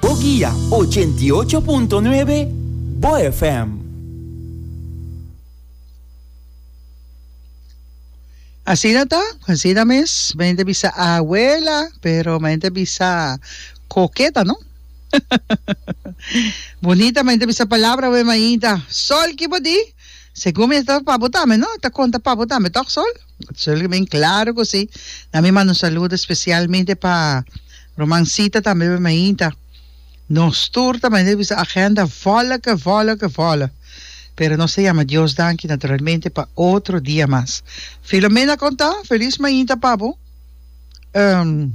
Bo guia ochenta i ocho punto nuebe Bo FM. Asina ta, asina mes. Mei ta bisa abuela, pero mei ta bisa koketa, no? Bunita, mei ta bisa palabra wen mainta. Sol, kibo di? Segun mi esta pa bo tambe, no? Ta konta pa bo tambe, tok Sol? Sulke bin claro cu si. Nan mi manda un saludo especialmente pa Romancita tambe pa mi ainta. Nos tur ta mende bisa agenda volle ke volle ke volle. Pero nos ta yama Dios danki naturalmente pa otro dia mas. Filomena con ta? Feliz mainta pa bo. Um,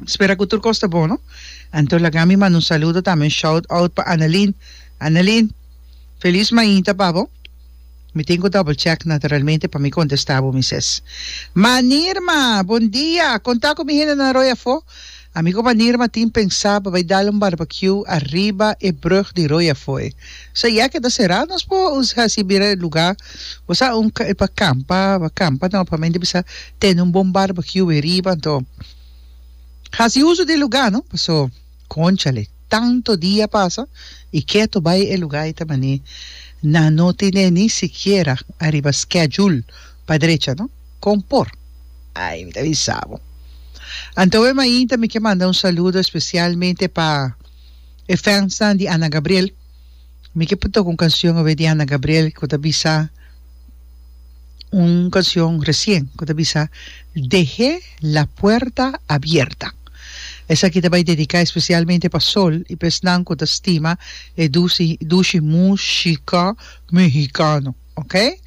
spera cu tur cos ta bon, no? Anto laga mi manda un saludo tambe, un shout-out pa Annelien. Annelien, feliz mainta pa bo. Mi tin cu double check naturalmente pa mi contesta bo mi ses. Manirma! Bon dia! Con ta cu mi hendenan roi afo? Amigo Manirma tin pensa pa bay dal un barbecue ariba e brug di roi afoe. So ya ke ta cera nos por haci bira e lugar. Bo sa un e pa campa pa campa no pa mente bisa tene un bon barbecue riba anto haci uso di e lugar no paso. Conchale, tanto dia pasa y keto bay e lugar y ta mané nan no tiné ni sikiera ariba schedule pa drecha no? Con por? Ay, mi ta bisa bo. Anto e mainta mi ke manda un saludo especialmente pa e fansnan di Ana Gabriel. Mi ke por toka un canción awe di Ana Gabriel ku ta bisa un canción recien ku ta bisa Deh'é la puerta abierta. Esaki ta bai dediká especialmente pa Sol i pa esnan ku ta stima e dusi dushi múshika mehikano. Ok.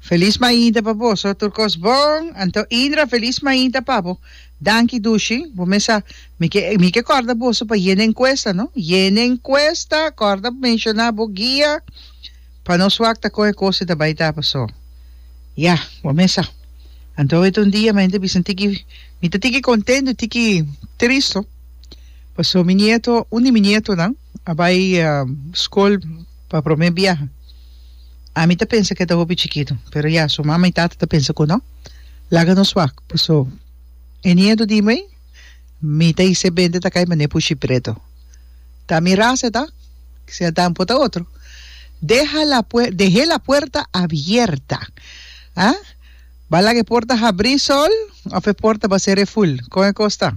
Felis mainta pa boso tur kos bon anto Indra felis mainta pa bo. Danki Dushi, bo mes a mi ke mi ke kòrda boso pa yena enkuesta no, yena enkuesta kòrda menshoná bo guia pa nos wak ta kon e kos e ta bai ta pasó. Ya, bo mes sa. Anto e ta un dia mente bisa tiki mi ta tiki kontento tiki tristo paso mi nieto un di mi nietonan, a bai skol pa prome biaha ami ta pensa ke ta hopi chikitu pero ya su mama y tata ta pensa ku no laga nos wak paso e nieto di mi mi ta hise bende ta kai mane pushi preto ta mi rasa ta kisea ta ampo ta otro deha la puer dehe la puerta abierta ha ba laga e porta habri sol of e porta ba sere ful kon e kos ta.